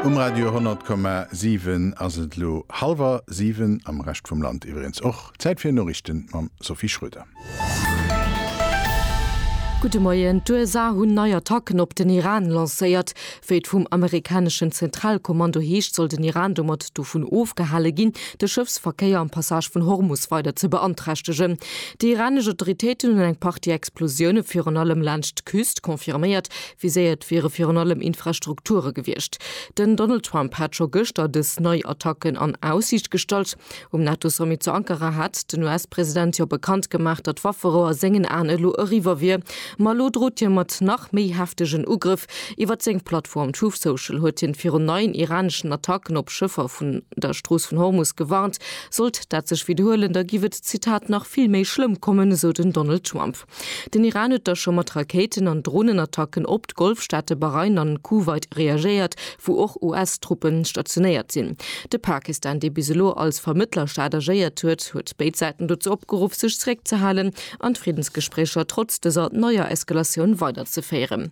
Um Radio 100,7 ass et elo hallwer siwen, am Rescht vum Land iwwereens och. Zäit fir Noriichten mam Sophie Schröder. Gudde Moien, D'USA hunn nei Attacken op den Iran lancéiert. Wéi et vum amerikaneschen Zentralkommando heescht, soll den Iran domat dovun ofgehale ginn, de Schëffsverkéier am Passage vun Hormus weider ze beanträchtegen. Déi iranesch Autoritéiten hunn eng Partie Explosioune virun allem laanscht d'Küst confirméiert, Viséiert wiere virun allem Infrastrukture gewiescht. Den Donald Trump hat scho gëschter dës nei Attacken an Aussiicht gestallt. Um NATO-Sommet zu Ankara hat den US-President jo bekannt gemaach, datt d'Wafferou a sengen Aen elo eriwwer wier. Ma elo drot hie mat nach méi heftegen Ugrëff. Iwwer seng Plattform Truth Social huet hien virun neien iraneschen Attacken op Schëffer vun der Strooss vun Hormus gewarnt. Sollt dat sech widderhuelen, da giff et, Zitat, nach vill méi schlëmm kommen, esou den Donald Trump. Den Iran huet da scho mat Rakéiten an Dronenattacken op d'Golfstaate Bahrain an Kuwait reagéiert, wou och US-Truppen stationéiert sinn. De Pakistan, dee bis elo als Vermëttlerstaat agéiert huet, huet béid Säiten dozou opgeruff, sech zeréckzehalen an d'Friddensgespréicher trotz dëser neier Eskalatioun weiderzeféieren.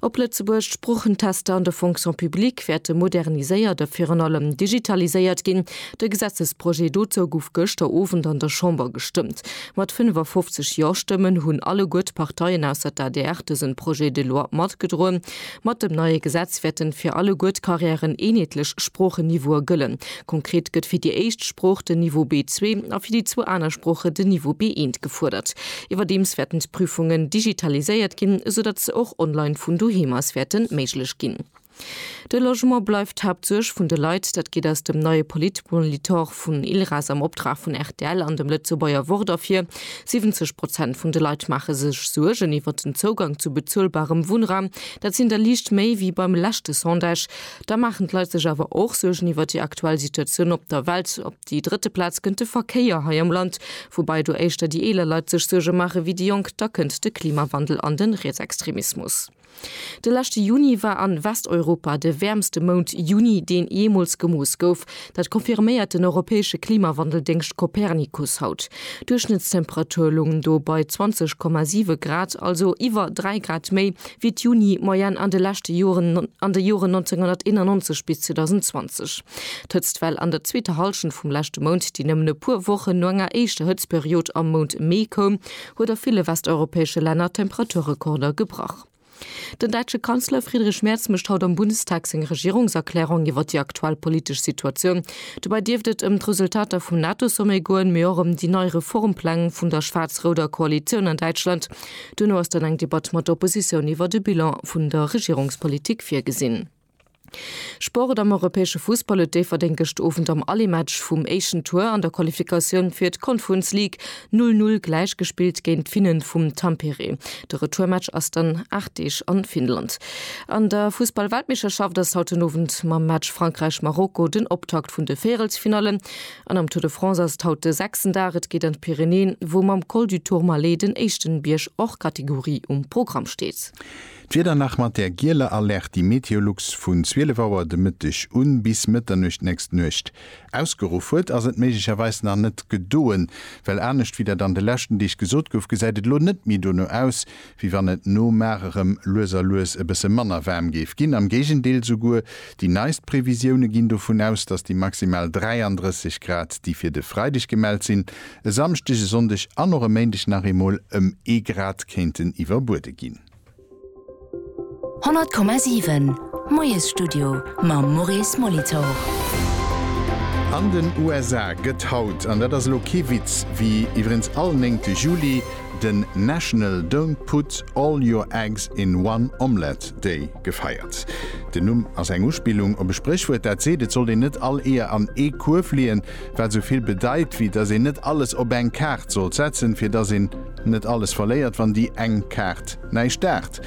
Op Lëtzebuerg, D'Sproochentester an der Fonction publique wäerte moderniséiert a virun allem digitaliséiert ginn. De Gesetzesprojet dozou gouf gëschter Owend an der Chamber gestëmmt. Mat 55 Jo-Stëmmen hunn alleguer d'Parteien ausser d'ADR dëse Projet de loi matgedroen. Mat dem neie Gesetz wäerte fir alleguer d'Carrièren eenheetlech Sproochen-Niveaue gëllen, Konkret gëtt fir déi éischt Sprooch den Niveau B2 a fir déi zwou aner Sproochen den Niveau B1 gefuerdert. Iwwerdeems wäerten d'Prüfungen digitaliséiert ginn, esou datt se och online vun doheem aus wäerte méiglech ginn. De Logement bleift d'Haaptsuerg vun de Leit. Dat geet aus dem neie Politmolitor vun ILRAS am Optrag vun rtl an dem Lëtzebuerger Wort ervir. 70 Prozent vun de Leit maache sech Suergen iwwert den Zougang zu bezuelbarem Wunnraum. Dat sinn der liicht méi wéi beim leschte Sondage. Da maachen d'Leit sech awer och Suergen iwwer déi aktuell Situatioun op der Welt. Op déi drëtte Plaz kënnt de Verkéier hei am Land, woubäi do éischter déi eeler Leit sech Suerge maache wéi déi Jonk. Da kënnt de Klimawandel an de Rietsextremismus. De leschte Juni war a Westeuropa de wäermste Mount, Juni, deen jeemools gemooss gouf. Dat confirméiert den europäesche Klimawandeldéngscht Copernicus haut. D'Duerchschnëttstemperature loungen do bei 20,7 Grad, also iwwer 3 Grad méi wéi d'Juni-Moyenne an de leschte Joren, an de Joren 1991 bis 2020. D'Hëtztwell an der zweeter Hallschent vum leschte Mount, déi nëmmen e puer Wochen no enger éischter Hëtztperiod am Mount Mee koum, huet a ville westeuropäesche Länner Temperaturrekorder gebrach. Den däitsche Kanzler Friedrich Merz mécht haut am Bundestag seng Regierungserklärung iwwer déi aktuell politesch Situatioun. Dobäi dierft et ëm d'Resultater vum NATO-Sommet goen, mee och ëm déi nei Reformpläng vun der schwaarz-rouder Koalitioun an Däitschland. Duerno ass dann eng Debatt mat der Oppositioun iwwer de Bilan vun der Regierungspolitik virgesinn. Sport, Am europäesche Fussball huet Déifferdeng gëscht Owend am Allemaatch vum éischten Tour an der Qualifikatioun fir d'Conference League 0, 0 gläich gespillt géint d'Finnen vum Tampere. De Retourmatch ass dann 8 Deeg an Finnland. An der Fussballweltmeeschterschaft ass haut den Owend mam Match Frankräich, Marokko den Optakt vun de Véierelsfinallen. An am Tour de France ass et haut de sechsten Dag. Et geet an d'Pyrenäen, wou mam Col du Tourmalet den éischten Bierg hors catégorie um Programm steet. D'Wieder nach mat der gieler Alerte, déi Meteolux vun 12 Auer de Mëtteg u bis Mëtternuecht nächst Nuecht ausgeruff huet, ass et méiglecherweis nach net gedoen, well anescht wéi dat an de leschten Deeg gesot gouf, gesäit et elo net méi dono aus, wéi wann et no mar erëm lues a lues e bësse manner waarm géif ginn. Am Géigendeel, souguer déi neist Previsioune ginn dovun aus, datt déi maximal 33 Grad, déi fir de Freideg gemellt sinn, e Samschdeg, e Sonndeg an och e Méindeg nach eemol ëm ee Grad kéinten iwwerbuede ginn. 100,7 Moiesstudio mam Maurice Molitor. An den USA gëtt haut, an dat ass elo kee Witz, wéi iwwerens all néngte Juli, den National Don't Put All Your Eggs in One Omelette Day gefeiert. Den Numm ass eng Uspillung op e Spréchwuert, dat seet, et sollt een net all Eeër an ee Kuerf leeën, wat esou vill bedeit, wéi datt een net alles op eng Kaart sollt setzen, fir datt een Net alles verléiert wann déi eng Kaart näischt daacht.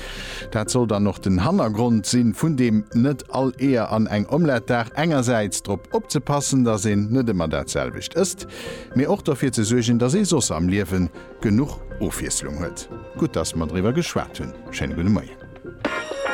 Dat soll dann och den Hannergrond si vun deem net all Eeër an eng Omlette daacht. Engersäits drop opzepassen, datt een net ëmmer dat selwecht ësst, mee och derfir ze suergen, datt ee soss am Liewe genuch Ofwiesslung huet. Gutt datt mer driwwer geschwat hunn. Schéine gudde Moien.